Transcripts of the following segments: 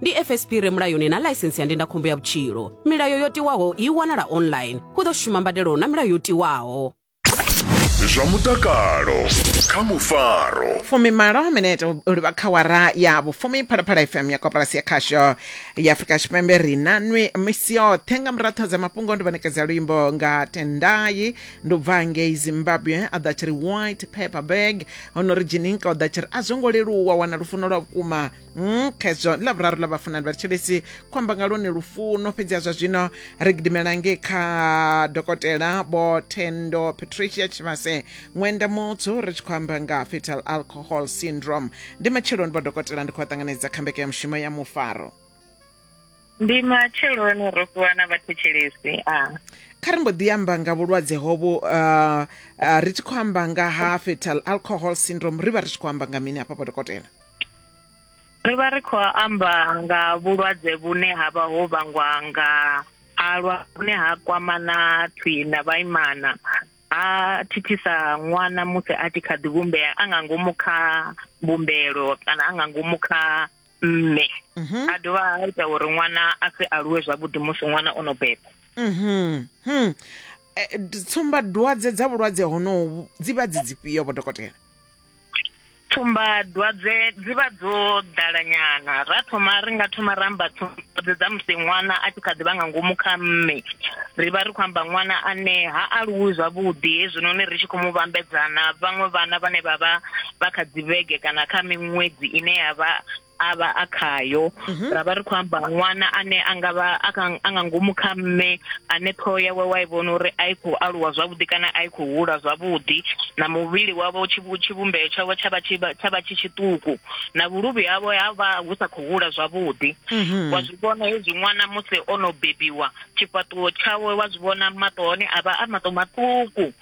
ndi fsp re mulayoni na ḽaisensi ya ndindakhombo ya vhutshilo milayo yo tiwaho i wanala online hu ḓo shuma mbadelo na milayo yo tiwaho zwa mutakalo kha mufaro fumimalo minete u livha kha wara ya vhufumi phalaphala fm ya koporasi ya khasho ya afurika tshipembe ri na nwi misi yoṱhe nga muratho dza mafhungo ndi vhanekedza luimbo nga tendai ndi u bva ngei zimbabwe a ḓa tshi ri white paper bag hono ri jininka u ḓa tshi ri a zwo ngo leluwa wana lufuno lwa vhukuma Mm, khezwo ḽa vhuraru ḽa vhafunani vha thetshelesi khou amba nga lwone lufuno fhedzi ha zwa zwino ri gidimela ngei kha dokotela vho thendo patricia tshivhase ṅwenda mutsu ri tshi khou amba nga fetal alcohol syndrome ndi matsheloni vho dokotela ndi khou vha ṱanganedza kha mbeke ya mushumo ya mufaro ndi matsheloni ro fhiwa na vhathetshelesi a kha ri mbo ḓi amba nga vhulwadze hovhu uh, uh, ri tshi khou amba nga ha fetal alcohol syndrome ri vha ri tshi khou amba nga mini hafha vho dokotela ri vha ri khou amba nga vhulwadze vhune ha vha ho vhangwa nga alwa vhune ha kwama na thwi na vhaimana ha thithisa ṅwana musi a tshi kha ḓi vhumbea a nga ngomu kha mbumbelo kana a nga ngomu kha mme mhm. a dovha a ita uri ṅwana a si aluwe zwavhuḓi musi ṅwana o no beba mhm. hmm. eh, tsumba dwadze dza vhulwadze honohu dzi vha dzi dzifhio vho dokotela tsumbadwadze dzi vha dzo ḓalanyana ra thoma ri nga thoma ra amba tsumbadwadze dza musi ṅwana a tshi kha ḓi vha nga ngomu kha mme ri vha ri khou amba ṅwana ane ha aluwi zwavhuḓi hezwinoni ri tshi khou mu vhambedzana vhaṅwe vhana vhane vha vha vha kha dzivhege kana kha miṅwedzi ine ya vha a vha a khayo mhm. ra vha ri khou amba ṅwana ane a nga vha a nga ngomu kha mme ane ṱhoho yawe wa i vhona uri a i khou aluwa zwavhuḓi kana a i khou hula zwavhuḓi na muvhili wavho tshivhumbeo tshavho tsha vha tsha vha tshi tshiṱuku na vhuluvhi havho ha vha hu sa khou hula zwavhuḓi mhm. wa zwi vhona hezwi ṅwana musi o no bebiwa tshifhaṱuwo tshawe wa zwi vhona maṱo hone a vha a maṱo maṱuku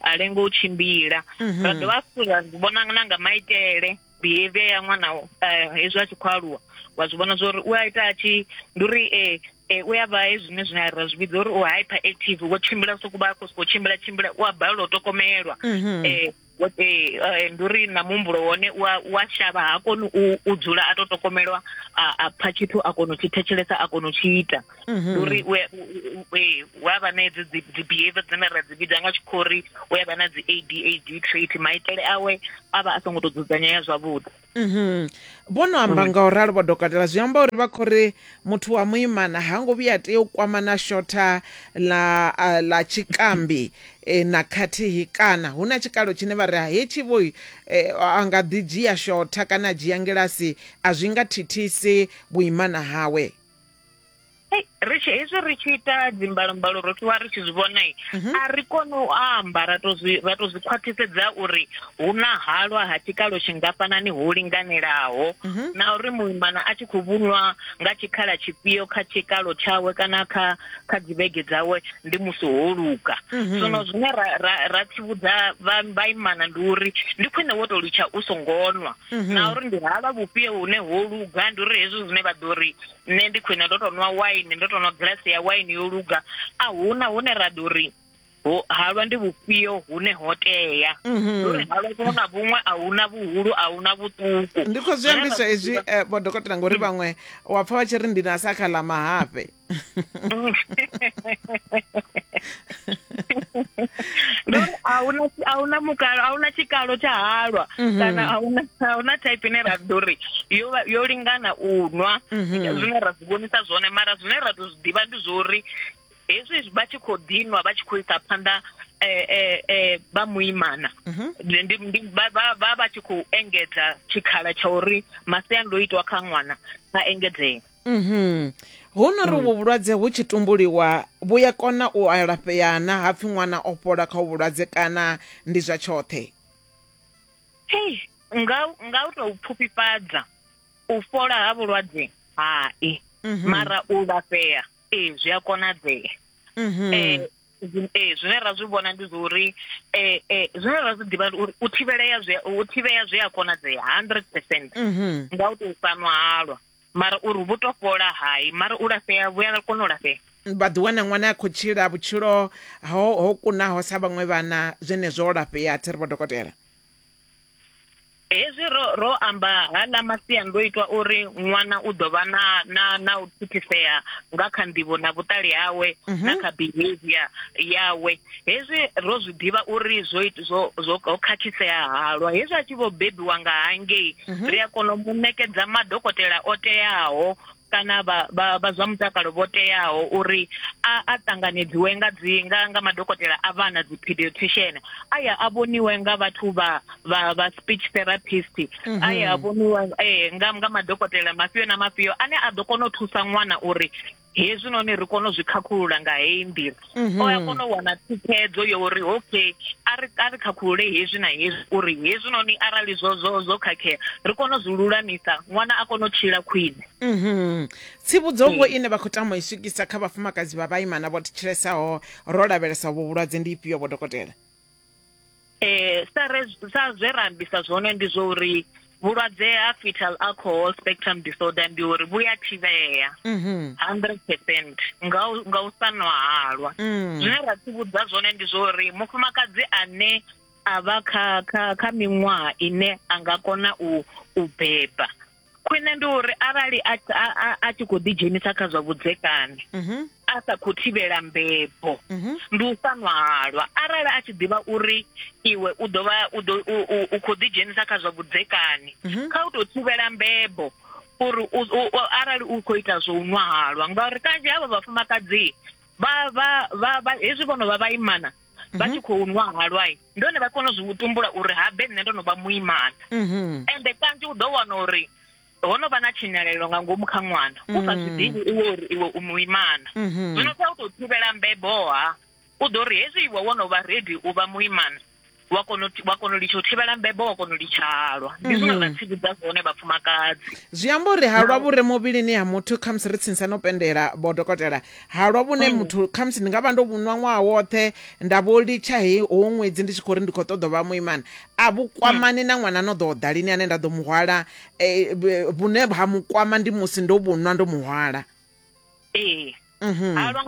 a lenga u tshimbila mhm. ra dovha futhi ra zwi vhona na nga maitele behavior ya ṅwana eh, hezwi a tshi khou aluwa wa zwi vhona zwori u a ita a tshi ndi uri um eh, u ya vha hezwine zwine ra zwi vhidza uri u hyper active wo tshimbila soku vha khou sokou tshimbila tshimbila u a balelwa u tokomelwa um Eh, ndi uri na muhumbulo wone wa shavha ha koni u dzula a to tokomelwa a pfa tshithu a kona u tshi thetshelesa a kona u tshi ita mhm. uri u a vha na edzi dzi behavior dzine ra dzi vhidza nga tshikho uri u a vha na dzi a d a d trait maitele awe a vha a songo tou dzudzanyea zwavhuḓi mhm. vho no amba mm. nga u ralo vho dokotela zwi amba uri vha khou ri muthu wa muimana ha ngo vhuya tea u kwama na shotha ḽa ḽa tshikambi e, na khathihi kana hu na tshikalo tshine vha ri ha hetshi vho e, a nga ḓi dzhia shotha kana a dzhia ngilasi a zwi nga thithisi vhuimana hawe Hey, ri tshi hezwi ri tshi ita dzimbalombalo ro ṱuwa ri tshi zwi vhona mhm. a ri kone u amba ra to zwi ra to zwi khwaṱhisedza uri hu na halwa ha tshikalo tshingafhanani ho linganelaho mhm. na uri muimana a tshi khou vhunwa nga tshikhala tshifhio kha tshikalo tshawe kana kha kha dzivhege dzawe ndi musi ho luga mhm. zwino zwine ra ra ra tsivhudza vhaimana ndi uri ndi khwine wo to litsha u songo nwa mhm. na uri ndi halwa vhufhio hune ho luga ndi uri hezwi zwine vha ḓo ri nṋe ndi khwine ndo to nwa waini ndo to nwa gilasi ya waini yo luga a huna hune ra ḓo ri halwa ndi vhufhio hune ho tea mhm. uri halwa vhuṅwe na vhuṅwe a huna vhuhulu a huna vhuṱuku ndi khou zwi ambiswa hezwi eh, vhodokotela ngori mm. vhaṅwe wa pfa vha tshi ri ndi na sa kha ḽa mahafhe lori ahuna ahuna mukalo ahuna tshikalo tsha halwa mhm. kana ahuna ahuna type ine ra ḓo ri yo yo lingana u nwa mhm. zwine ra zwi vhonisa zwone mara zwine ra tou zwi ḓivha ndi zwo uri hezwi vha tshi khou ḓinwa vha tshi khou isa phanḓa eh, eh, eh, vha muimana mhm. vha vha tshi khou engedza tshikhala tsha uri masiandoitwa kha ṅwana a engedzee Mhm. Hu no ri vhu vhulwadze hu tshi tumbuliwa vhu ya kona u alafhea na hapfi ṅwana o fhola kha vhulwadze kana ndi zwa tshoṱhe. Hey, nga nga u tou pfufhifhadza u fhola ha vhulwadze hai mhm. mara u lafhea ee zwi a konadzea mhm. eh, ee zwine ra zwi vhona ndi zwa uri eh, eh, zwine ra zwi ḓivha uri u thivhelea u thivhea zwi a konadzea hundred percent mhm. nga u tou sanwa halwa mara uri vhu to fhola hai mara u lafhea vhu a kona u lafhea vha ḓi wana ṅwana a khou tshila vhutshilo ho ho kunaho sa vhaṅwe vhana zwenezwo o lafhea thi ri vho dokotela hezwi ro ro amba haḽa masiandoitwa uri ṅwana u ḓo vha na na na u thithisea nga kha nḓivho na vhuṱali hawe na kha behavior yawe hezwi ro zwi ḓivha uri zwo zwo zwo khakhisea halwa hezwi a tshi vho bebiwa nga hangei mhm. ri a kona u mu ṋekedza madokotela o teaho kana vha vha vha zwa mutakalo vho teaho uri a a ṱanganedziwe nga dzi nga nga madokotela a vhana dzi pediatrician a ya a vhoniwe nga vhathu vha vha vha speech therapist mhm. a ya a vhoniwa eh nga nga madokotela mafhio na mafhio ane a ḓo kona u thusa ṅwana uri hezwinoni ri kone u zwi khakhulula nga heyi nḓila mhm. o ya kona u wana thikhedzo yo uri okay a ri a ri khakhulule hezwi na hezwi uri hezwinoni arali zwo zwo zwo khakhea ri kone u zwi lulamisa ṅwana a kone u tshila khwine mhm. tsivhudzo vho ine vha khou tama i swikisa kha vhafumakadzi vha vhaimana vho thetshilesaho ro lavhelesa vho vhulwadze ndi ifhio vho dokotela eh sa re sa zwe ra ambisa zwone ndi zwo uri vhulwadze ha fetal alcohol spectrum disorder ndi uri vhu ya thivhea 100% mhm. nga u nga u sa nwa halwa mm. zwine ra tsivhudza zwone ndi zwo uri mufumakadzi ane a vha kha kha kha miṅwaha ine a nga kona u u beba khwine ndi uri arali a a tshi khou ḓidzhenisa kha zwa vhudzekani mhm. a sa khou thivhela mbebo mhm. ndi u sa ṅwalwa arali a tshi ḓivha uri iwe u ḓo vha u khou ḓidzhenisa kha zwa vhudzekani mhm. kha u tou thivhela mbebo uri arali u khou ita zwo u ṅwahalwa ngauri kanzhi havha vhafumakadzi vha vha vha hezwi vho no vha vhaimana mhm. vha tshi khou nwa halwai ndi hone vha kona u zwi vhutumbula uri habe nṋe ndo no vha muimana mhm. ende kanzhi u ḓo wana uri ho no vha na tshinyalelo nga ngomu kha ṅwana u sa zwi ḓivhi mm. iwe uri iwe u muimana mhm. zwino kha u tou thivhela mbeboha u ḓo ri hezwi iwe wo no vha redi u vha muimana wa kono wa kono litsho thivhela mbebo wa kono litshalwa ndi zwine zwa mhm. tsivhudza zwone vhafumakadzi zwi amba uri halwa vhure muvhilini ha muthu khamusi ri tsinisa no pendela vho dokotela halwa vhune mm. muthu khamusi ndi nga vha ndo vhunwa ṅwaha woṱhe nda vho litsha he howo ṅwedzi ndi tshi khou ri ndi khou ṱoḓa vha muimana a vhukwamani mm. na ṅwana no ḓo o ḓalini ane nda ḓo muhwala eh, vhune ha mukwama ndi musi ndo vhunwa ndo muhwala ee mhm. halwa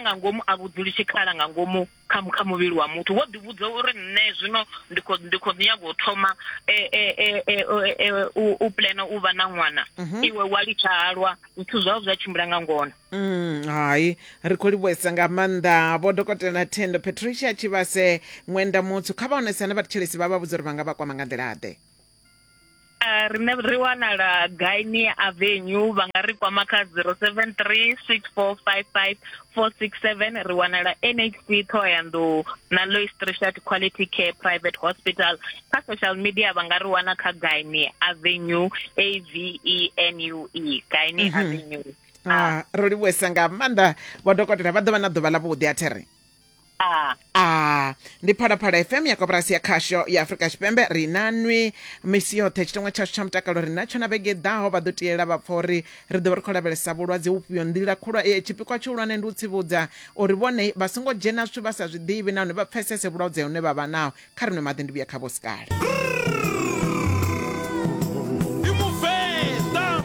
nga ngomu a vhudzuli tshikhala nga ngomu kha kha muvhili wa muthu wo ḓi vhudza uri nṋe zwino ndi kho ndi kho nyaga u thoma e, e, e, u plana u vha na ṅwana mhm. iwe wa litsha halwa zwithu zwao zwa tshimbila nga ngona mm, hai ri khou livhuesa nga maanḓa vho dokotela thendo patricia tshivhase ṅwenda mutsu kha vha onesane vhathetshelesi vha vha vhudza uri vha nga vha kwama nga nḓila-ḓe Uh, rine ri wanala gaini avenue vha nga ri kwama kha 073 6455 467 ri wanala nhc thohoyanḓou na lois trishat quality care private hospital kha social media vha nga ri wana kha gaini avenue a v e n u e gaini mm -hmm. avenue ah, ah. ro livhuesa nga maanḓa vhadokotela vha ḓo vha na ḓuvha ḽa vhuḓi a there a a ndi phalaphala fm ya koporasi ya khasho ya afurika tshipembe ri na nwi misi yoṱhe tshiteṅwa tshashu tsha mutakalo ri natsho na vhege ḓaho vha ḓo tiyela vha pfa uri ri ḓo vha ri khou lavhelesa vhulwadze vhufhio nḓila khulwa eh, tshipikwa tshihulwane ndi u tsivhudza uri vhone vha songo dzhena zwithu vha sa zwi ḓivhi nahone vha pfesese vhulwadze hune vha vha naho kha ri nwe maḓi ndi vhuya kha vho sikale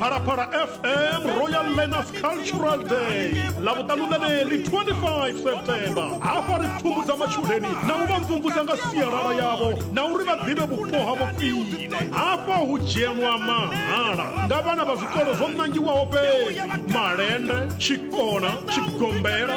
phalaphala fm royal learners cultural day ḽa vhuṱanu ḽeneḽi 25 september hafha ri pfumbudza matshudeni na u vha mvumvusa nga sialala yavho na uri vha ḓivhe vhupo havho khwine hafha hu dzhenwa mahala nga vhana vha zwikolo zwo nangiwaho fhedzi malende tshikona tshigombela